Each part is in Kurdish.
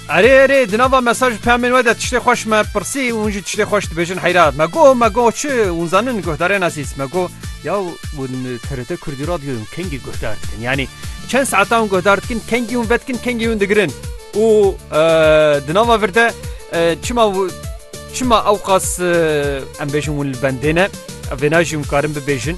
Erê erê di nava mesaj û peyamên we de tiştê xweş me pirsî û hûn jî tiştê xweş dibêjin heyra me got me got çi hûn zanin guhdarên ezîz me got ya hûn TRT Kurdî Radyoyê hûn kengî guhdar dikin yanî çend saeta hûn guhdar dikin kengî hûn vedikin kengî hûn digirin û di nava vir de çima çima ew qas em bêjin hûn li bendê ne vêna jî hûn karin bibêjin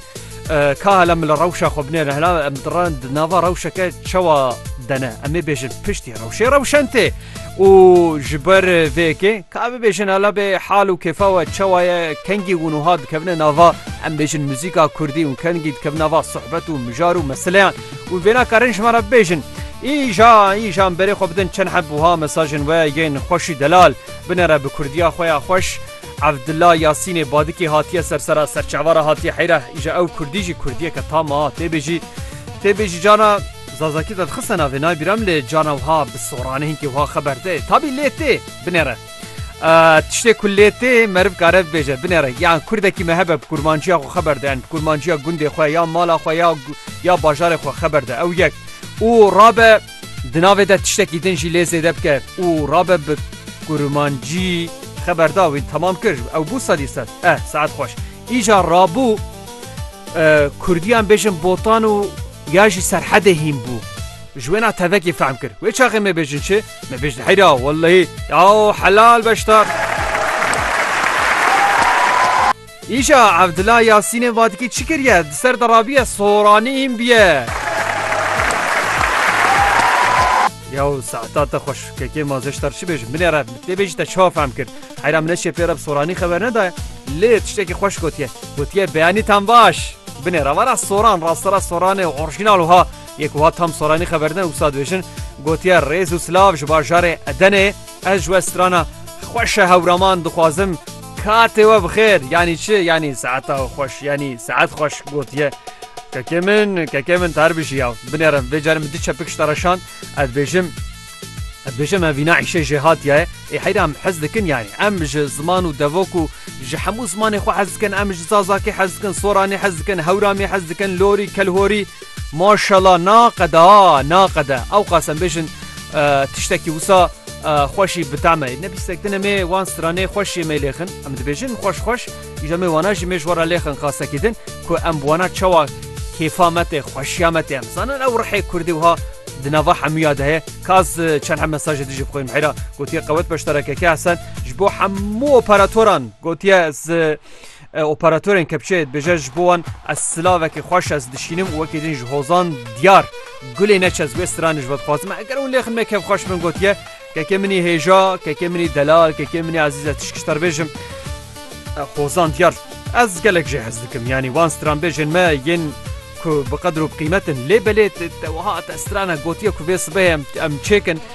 Ka hele min li rewşa xwe binêre hela em diran di nava rewşeke çewa dene em ê bêjin piştî rewşê rewşen tê û ji ber vêkê ka bibêjin hela bê hal û kêfa we çewa ye kengî hûn ûha dikevine nava em bêjin muzîka kurdî û kengî dikevin nava sohbet û mijar û meseleyan û vê nakarin ji me re bibêjin. Îja îja berê xwe bidin çend heb buha mesajên we yên xweşî delal binere bi kurdiya xwe ya xweş. Evdilla Yasînê Badikê hatiye ser sera serçava re hatiye heyra îja ew Kurdî jî Kurdiyeke tam a têbêjî têbêjî cana Zazakî te dixise navê nayê bîram lê cana wiha bi soranê hinkî wiha xeber tê tabî lê tê binêre tiştê ku lê tê meriv kare bibêje binêre yan Kurdekî me hebe bi kurmanciya xwe xeber de yan bi kurmanciya gundê xwe ya mala xwe ya ya bajarê xwe xeber de ew yek û rabe Di navê de tiştekî din jî lê zêde bike û rabe bi kurmancî xeber da wî temam kir ew bû sedî sed eh saet xweş îja rabû kurdiyan bêjin botan û ya jî serhedê hîn bû ji wêna tevekî fehm kir wê çaxê me bêjin çi me bêjin heyra wellehî ya helal beştar. Îşa Evdila Yasînê va dikî çi kiriye di ser de rabiye soranî hîn biye. Yaw saeta te xweş kekê ma zeştar çi bêjim binê re tê bêjî te çawa fehm kir heyra min eşê pê re bi soranî xeber nedaye lê tiştekî xweş gotiye gotiye beyanî tam baş binê re vara soran rastera soranê orjînal wiha yek wiha tam soranî xeber ne wisa dibêjin gotiye rêz û silav ji bajarê edenê Ez ji we strana xweş e hewraman dixwazim katê we bixêr yanî çi yanî saeta xweş yanî saet xweş gotiye. Kekê min kekê min tar bijî ya binêrin vê carê min di çepik ji te re şand ez bêjim ez bêjim em vîna îşê jê hatiye ye ê heyra em hez dikin yanî em ji ziman û devok û ji hemû zimanê xwe hez dikin em ji zazakê hez dikin soranê hez dikin hewramê hez dikin lorî kelhorî Maşallah naqede a naqede ewqas em bêjin tiştekî wisa xweşî bi teme ne bîstek din emê wan stranê xweşî me lêxin em dibêjin xweş xweş îja me wana jî mêj wara lêxin qasekî din ku em wana çawa kêfa me tê xweşiya me tê em zanin ew rihê kurdî wiha di nava hemûya de heye kaz çend hem mesajê dijî bixwînim hêra gotiye qewet beşdarekeke hesen ji bo hemû operatoran gotiye ez Operatorên kepçeyê dibêje ji bo wan ez silavekî xweş ez dişînim û wekî din ji hozan diyar gulê neç ez wê stranê ji we dixwazim e eger hûn lê xin me kevxweş min gotiye kekê min î hêja kekê min î delal kekê min î ezîz ez tişk ji te dibêjim hozan diyar ez gelek jê hez dikim yanî wan stranbêjên me yên ku bi qedir û bi qîmetin lê belê te wiha te strana gotiye ku vê sibehê em em çêkin